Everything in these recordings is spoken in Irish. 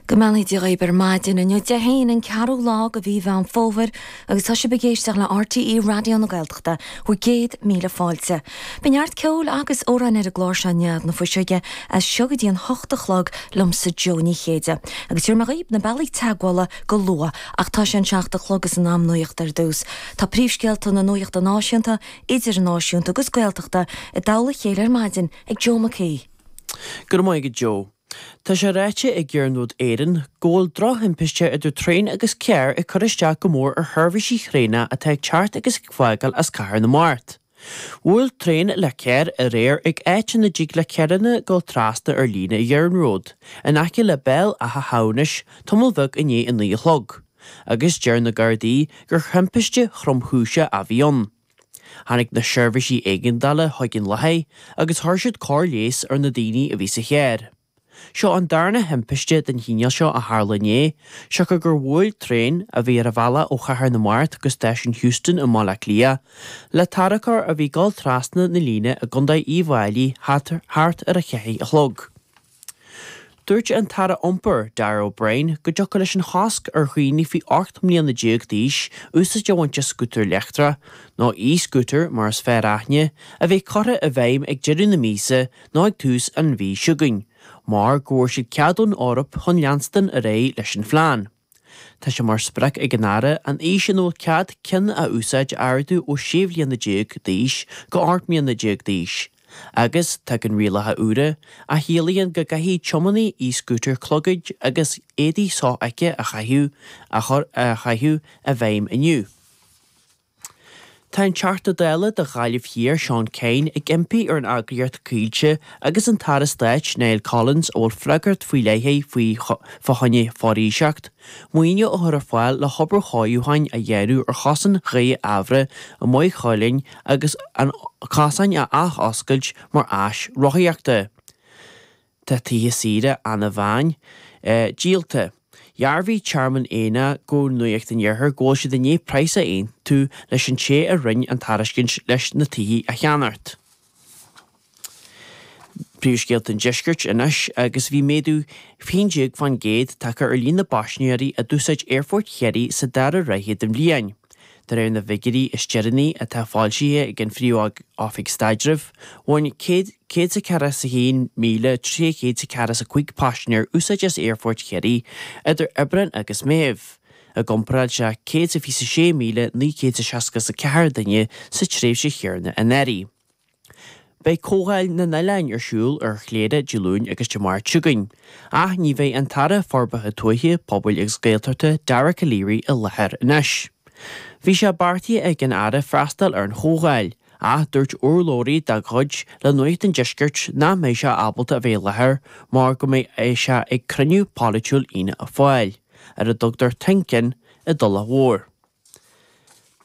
Go mbeannaí Dia dhaoib ar maidin. Inniu Dé hAoine, an ceathrú lá de mhí Mheán Fómhair agus tá sibh ag éisteacht le RTÉ Raidió na Gaeltachta, bhur gcéad míle fáilte. Beidh neart ceoil agus amhráin ar an gclár seo i ndiaidh na fuiseoige as seo go dtí an hocht a chlog liomsa Joe Ní Chéide. Agus tabharfaidh mé daoib na bealaí teagmhála go luath ach tá sé a seacht a chlog is in am nuacht ar dtús. Tá príomhscéalta na nuachta náisiúnta, idirnáisiúnta agus Gaeltachta i dtoll a chéile ar maidin ag Joe McHugh. Go raibh maith agat Joe. Tá sé ráite ag Iarnród Éireann go bhfuil drochthimpiste idir traein agus carr ag cur isteach go mór ar sheirbhísí thraenach atá ag teacht agus ag fágáil as Cathair na Mart. Bhuail traein le carr aréir ag áit ina dtig le carranna dul trasna ar líne an iarnróid, in aice le Béal Átha hAmhnais, tamall bheag i ndiaidh a naoi a chlog, agus deir na Gardaí gur thimpiste thromchúise a bhí ann. Tháinig na seirbhísí éigeandála chuig an láthair agus chuir siad cóir leighis ar na daoine a bhí sa charr. Seo an darna thimpiste den chineál seo a tharla inné, siocair gur bhuail traein, a bhí ar a bhealach ó Chathair na Mart go stáisiún Heuston i mBaile Átha Cliath, le tarracóir a bhí ag dul trasna na líne i gContae Uíbh Fhailí thart ar a ceathair a chlog. Dúirt an tAire Iompair, Darragh O'Brien, go dtiocfadh leis an chosc ar dhaoine faoi 18 mbliana d'aois úsáid a bhaint as scútar leictreach, nó e-scooter mar is fearr aithne, a bheith curtha i bhfeidhm ag deireadh na míosa nó ag tús an mhí chugainn, mar go bhfuair siad cead ón Eoraip chun leanstan ar aghaidh leis an phlean. Tá sé mar sprioc ag an Aire an aois ina bhfuil cead ceann a úsáid a ardú ó 16 bhliana d'aois go 18 mbliana d'aois agus tagann rialacha úra a chiallaíonn go gcaithfidh tiománaí e-scútair clogaid agus éadaí sofheicthe a chaitheamh a chur a chaitheamh i bhfeidhm inniu. Tá an Teachta Dála do Ghaillimh Thiar, Seán Kyne, ag impí ar an eagraíocht Coillte agus an tAire Stáit, Niall Collins, a bhfuil freagracht faoi leith aige fá choinne foraoiseacht, maoiniú a chur ar fáil le hobair chothabhála a dhéanamh ar chosán Ghaoth Eamhra i Maigh Chuilinn agus an cosán a athoscailt mar áis rothaíochta. Tá tithe saoire Anna Bhán díolta. Dhearbhaigh Tearmann Éanna go Nuacht an Iarthair go bhfuil siad i ndiaidh praghas a aontú leis an té a rinn an tairiscint leis na tithe a cheannacht. Príomhscéalta an Deiscirt anois agus Bhí méadú 11% tagtha ar líon na bpaisnéirí a d'úsáid Aerfort Chiarraí sa dara ráithe den bhliain, de réir na bhfigiúirí is deireanaí atá foilsithe ag an Phríomh-Oifig Staidrimh. Bhain 100. 141,345 paisinéir úsáid as Aerfort Chiarraí idir Aibreán agus Meitheamh, i gcomparáid le 126,964 duine sa tréimhse chéanna anuraidh. Beidh Comhdháil na nOileáin ar siúl ar Chléire Dé Luain agus Dé Máirt chugainn, ach ní bheidh an tAire Forbartha Tuaithe, Pobail agus Gaeltachta, Dara Calleary, i láthair anois. Bhí sé beartaithe ag an Aire freastal ar an chomhdháil, ach dúirt urlabhraí dá chuid le Nuacht an Deiscirt nach mbeidh sé ábalta a bheith i láthair mar go mbeidh sé ag cruinniú polaitiúil Fhianna Fáil, ar a dtugtar 'Think In', i dTulach Mhór.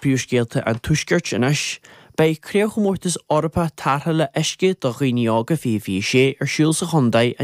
Príomhscéalta an Tuaiscirt anois. Beidh Craobhchomórtas Eorpach Tarrthála Uisce do Dhaoine Óga, 2026, ar siúl sa chontae an.